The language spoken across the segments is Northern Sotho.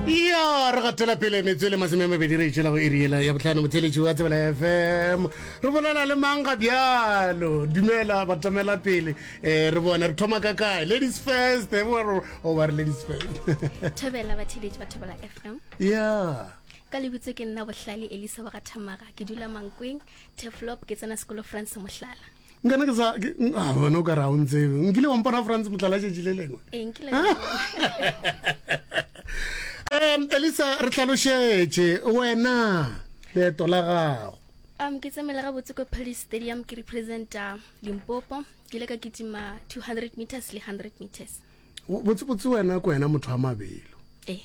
ya re gatela pele metse le masome a mabedi re itšela go eriela ya botlhano motheletši wa tsebela fm re bolela le mang ga bjalo dumela batamela pele um re bone re thoma ka kae ladies first oba re ladies first thobela batheletši ba thobela fm ya ka lebitso ke nna bohlale elisa wa ga thamaga ke dula mankweng teflop ke tsena sekolo france mohlala nkana ke sa a bona o ka ra o ntsebe nkile wa mpona france motlala tšatši le lengwe um elisa re tlhalošetše wena leeto la gago um ke tsamela ga botse ko paris stadium ke representa limpopo ke ile ka kitima 200 meters le 100 meters botsebotse wena ko wena motho wa mabelo eh.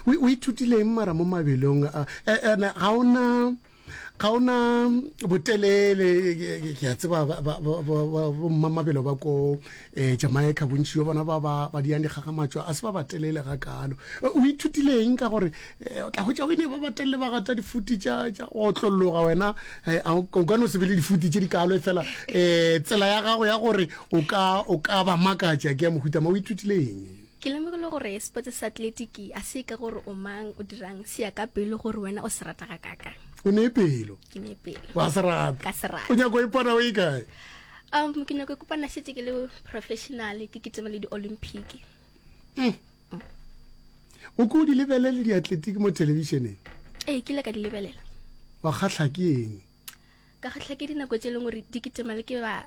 o ithutileng mara mo mabelong ene ga ona ga o na botelele ke a tseba bommamabelo ba ko um jamaica bontši bjo bona ba ba ba diyang dikgakgamatšo a se ba batelele ga kalo o ithutileng ka gore eh, o tla hwetša o ne ba batelele ba gata difuti tša tša go otlolloga wena eh, a o ka- o ka no se be le difuti tše di kalo e fela um tsela ya gago ya gore o ka o ka ba makatša ke ya mohuta ma o ithutileng Ke lemogile gore sepotse sa atletiki a se ye ka gore o mang, o dirang, se ya ka pelo gore wena o se rata ga kakang. O ne pelo. Ke ne pelo. Wa se rata. Ka se rata. O nyako e pona o e kae? Um, ke nyako e kopana setse ke le professional, ke kitema le di-olympic. Mm. Mm. O ko di lebelele di-atletiki mo televisioneng? Ee, ke ile ka di lebelela. Wa kgatlha ke eng? Ka kgatlha ke dinako tse e leng gore di kitema le ke ba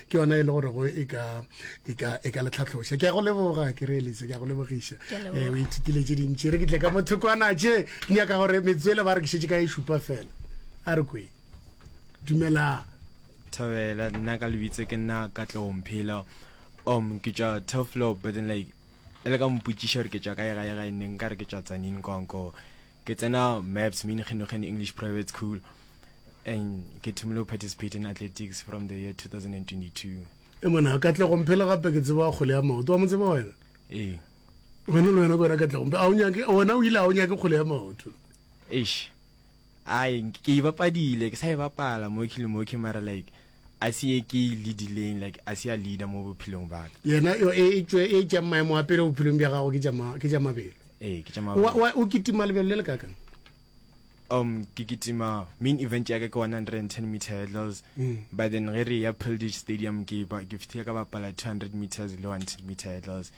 ke yona e le gore go e ka e ka e ka letlhatlhoša ke ya go leboga ke re elise ke ya go lebogiša eh o ithutile tše dintši re ke tle ka motho kwana tše ke nyaka gore metswele ba re ke šetse ka e šupa fela a re kwe dumelang thabela nna ka lebitse ke nna ka tlong phela um ke tša toflo but then like e le ka mpotšiša gore ke tša kae gae gae nne nka re ke tša tsanin kwanko Ke tsena MEPS, München English Private School, and ke thomile go participate in athletics from the year 2022. E mona Katlegong phela gape ke tseba kgole ya maoto wa mo tseba wena Ee. wena le wena ke wena Katlegong a o nyake wena o ile a o nyake kgole ya maoto Eish. Ai ke e bapadile ke sa e bapala mo ke le mo ke mara like A se ye ke e lead-ileng, like a se ya leader mo bophelong ba ka. Yena yo e etšwe e tša maemo a pele bophelong bja gago ke tša ma, ke tša mabelo. Ee, ke tša O, mabelo. o, o kitima lebelo le le kakang? Um, ke kitima main event ya ka ke 110 meter hurdles. Mm. But then ge re ya Pildish Stadium ke ba, ke fihlile ka bapala 200 meters le 110 meter hurdles.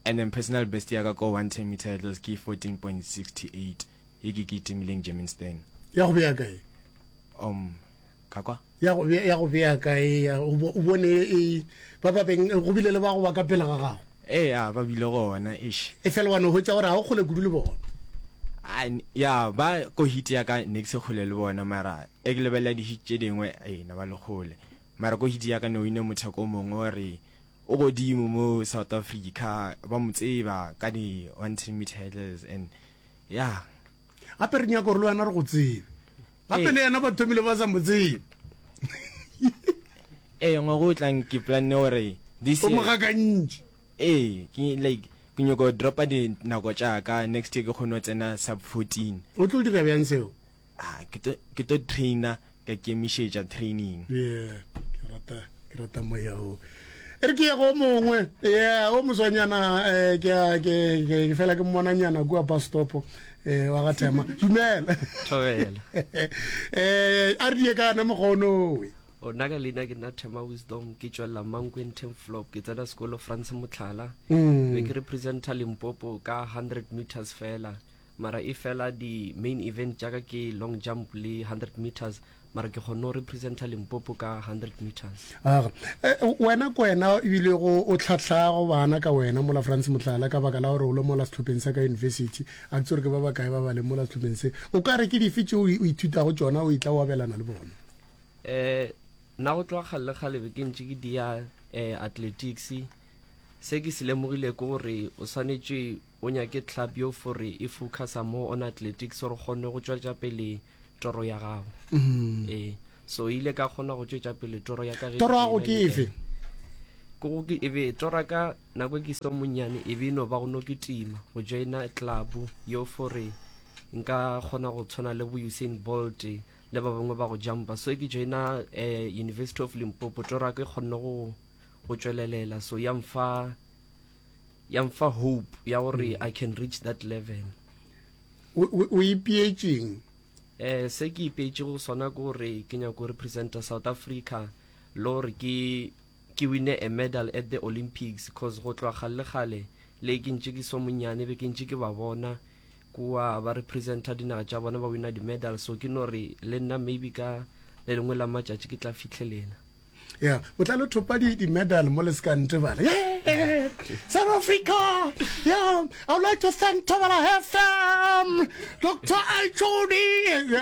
And then personal best ya ka ko 110 meter hurdles ke 14.68 ye ke kitimileng Germiston. Ya go bea kae? Um, Ka kwa. Ya go bea, ya go bea kae, ya, o bo, o bone e, ba ba beng, go bile le ba go ba ka pele ga gago. Ee, a, ba bile gona, eish. Efela wa no hwetša gore ga o kgole kudu le bona. A, n- ya, ba, ko hit ya ka ne ke se kgole le bona, mara e ke lebelela di-hit tše dingwe, ee, ne ba le kgole. Mara ko hit ya ka ne o ine motheko o mongwe o re o godimo mo South Africa, ba mo tseba ka di-one ten metre hurdles and, ya. gape re nyaka gore le wena re go tsebe gape le yena ba thomile ba sa mo tsebe ee ngwago o tlang ke planne gore this o mo gakantši ee ke like ke nyoko go dropa dinako tšaka next year ke kgone go tsena sub fourteen o tlo dira bjang seo ke tlo traina ka kemišetša training. Yeah, ke rata ke rata moya o. Ere ke go mongwe. Yeah, o moswanyana eh ke ke ke fela ke mmona nyana kwa bus stop eh wa ga Thema. Dumela. Thobela. Eh a re die ka na mogono we. O nna ka leina ke nna Thema Wisdom ke tšwelela Mankweng ten flop ke tsena sekolo France Motlhala. Mm. Be ke representa Limpopo ka 100 meters fela. mara e fela di main event tša ka ke long jump le 100 meters mara ke kgonne go representa limpopo ka 100 meters aga eh, wena ko wena ebile go o tlhatlhago bana ka wena mola france motlala ka baka la gore o le mola setlhopheng sa ka university a ke ke ba ba kae ba ba le mola setlhopheng se o ka re ke dife tse o ithutago tsona o itla o abelana le bona um nna go tloga kgale kgalebe ke ntse ke dia um athletics se ke se lemogile ke gore o swanetše O nyake club yo fore e focusa more on athletics gore kgonne go tšwetša pele toro ya gago mm. e so ile ka kgona go tšwetša pele toro ya ka ge toro ya go ke efe ke go ke ebe tora ka nako ke so monnyane e be no ba go no ke tima go joina club yo fore nka kgona go tshwana le bo Usain Bolt le ba bangwe ba go jumpa so ke joina eh, University of Limpopo tora ke kgonne go go tšwelelela so ya mfa ya mfa hope ya gore mm. i can reach that level o ipeetseng eh se ke ipeetse go sona ke gore ke nyako representa south africa le gore ke ke wine a medal at the olympics cause go tloa gale gale le ke ntse ke so monyane be ke ntse ke ba bona kua ba representa dinaga tša bona ba wina di-medal so ke no re le nna maybe ka le lengwe la matšatši ke tla fitlhelela ya botlalo thopa di-medal mo le se ka ntebala south africa yeah, i would like to thank tobala fm dr ichodi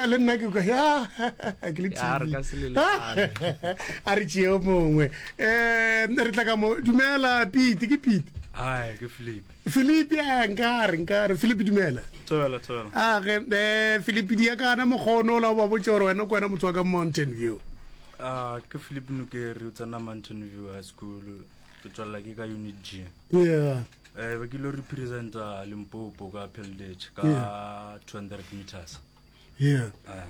le nna ke ke le a re tšeo mongwe um re tla ka mo dumela pete ke pete philipi a nkare nkare philipi dumela age um philipi di ya kana mokgono o la o ba botse gore wena ko wena motho wa ka mountain view Uh, ke Philip Nukeri o tsena Mountain View High School ke tswalela ke ka unit G yeah eh ba kile re presenta Limpopo ka Peldech ka yeah. 200 meters yeah uh.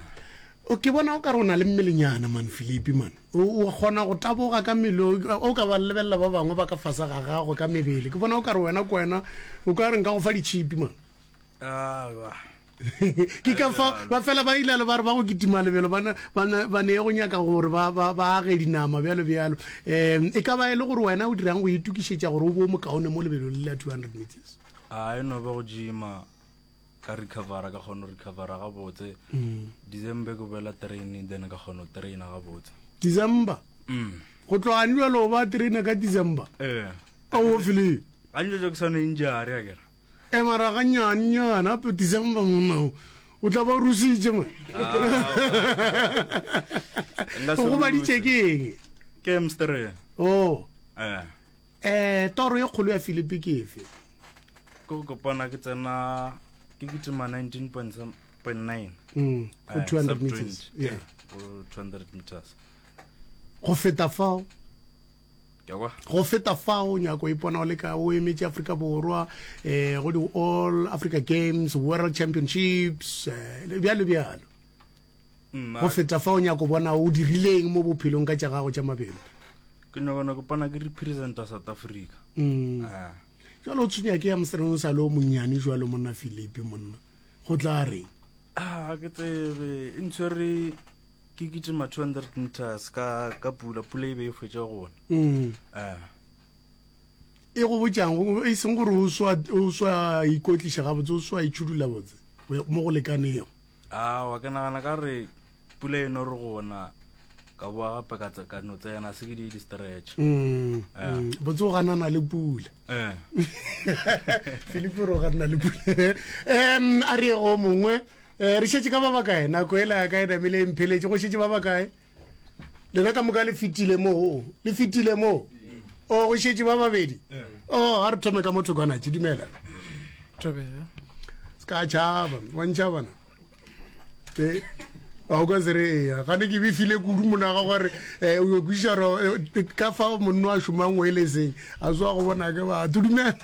o ke bona o ka re o na le mmelenyana man Philipi man o kgona go taboga ka mmele o ka ba lebelela ba bangwe ba ka fasa ga gago ka mebele ke bona o ka re wena ko wena o ka reng ka go fa ditšhipi man uh, ke ka fa ba fela ba ilalo ba re ba go kitima lebelo ba ne ye go nyaka gore ba age dinama bjalo bjalo um e ka ba e le gore wena o dirang go itukišetša gore o bo mokaone mo lebelo le la 200 meters a e no ba go jima ka recovera ka kgone recovera ga botse mm. december ko bela train then ka kgone train ga botse december mm. go tloga njo lo ba train ka december eh ka o fili a njo jo ke sone injare ya kera Emara gannyane nyana, a phetiša mpa monna o. O tla ba o rusitše, man. O gobaditše ke eng? Ke emstere. Oh. Eh. Eh, toro ye kgolo ya Filipi ke efe? Ke go kopana ke tsena ke kitima 19.9. Mm. Go 200 eh, meters. Yeah. Go 200 meters. Go feta fao. Go feta fao, nyako o ipona o le ka o emetše Afrika Borwa um go di-All Africa Games, World Championships, um bjalo bjalo. Go feta fao, nyako bona o dirileng mo bophelong ka tša gago tša mabelo? Ke nyakona ke pona ke representa South Africa. Mm. Ah. Jwale o tshwenya ke ya mosreng o sa le o monnyane jwalo monna Philipi monna. Go tla reng? Ah, ke tsebe. E ntshwere ke kitima 200 meters ka ka pula pula e be e hwetša gona mm. eh e go botjang go e seng gore o swa o swa ikotlisha ga botse o swa itshudula botse mo go lekanego a wa ke nagana ka re pula e no re gona ka boa gape ka ka no tsena se ke di di stretch mm, eh. mm. botse o ganana le pula eh filipo ro ganana le pula em a re go mongwe Eh, re šetše ka ba bakae nako e la ka e namile e mpheletše go šetše ba bakae lena ka moka le fetile moo le fetile moo o go šetše ba babedi o a re thome ka motho kwanatše dumela Thobela. se ka tšhaba wantšha bona Eh, a o ka se re eya gane ke befile kudu monaga gore um o kwešiša gore eh, ka fa monno a šomang o e le seng a soa go bona ke batho dumela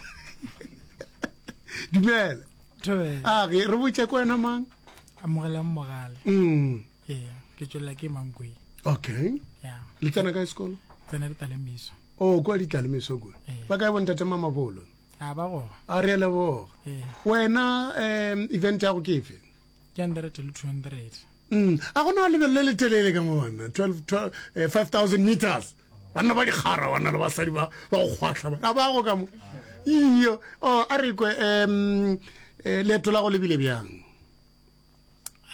dumela Thobela. a ge re botse ko wena mang Amogelang mogale. Mm, Ee, ke tšwelela ke Mankweng. okay Ya. le tsena kae sekolo Tsena le talemiso. o kwa ditlalemeso kua Ee. ba kae bontate mamabolo A ba go. a re leboga Ee. wena um event ya go ke efe Ke hundred le two hundred. Mm, a gona lebelo le le telele ka mo bona 12 12, eh, 5000 meters banna ba dikgara banna le basadi ba ba go kgwahla ba a bago ka mo iyo oh, a re kwe um leeto la go lebile bjang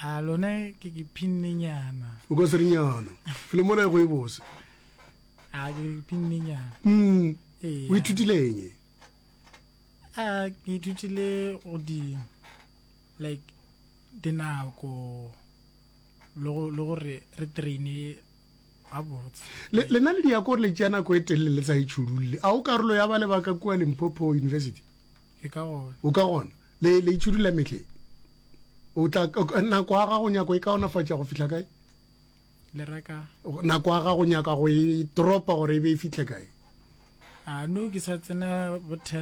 a lone ke ke phinnenyana o ka serinyana le mola e go e bose a ke phinnenyana mm o ithutileng a ke ithutile go di like dinako le gore re traine lena le diakore le tšea nako e telele le sa e tšhudulele a o karolo ya ba le baka kua limpopo university o ka gona le e tšhudula metlheng o tla nako ya gago nyako e kaonafatša go fitlha kae nako ya gago nyaka go e tropa gore e be e fitlhe kae no ke sa tsena bo ten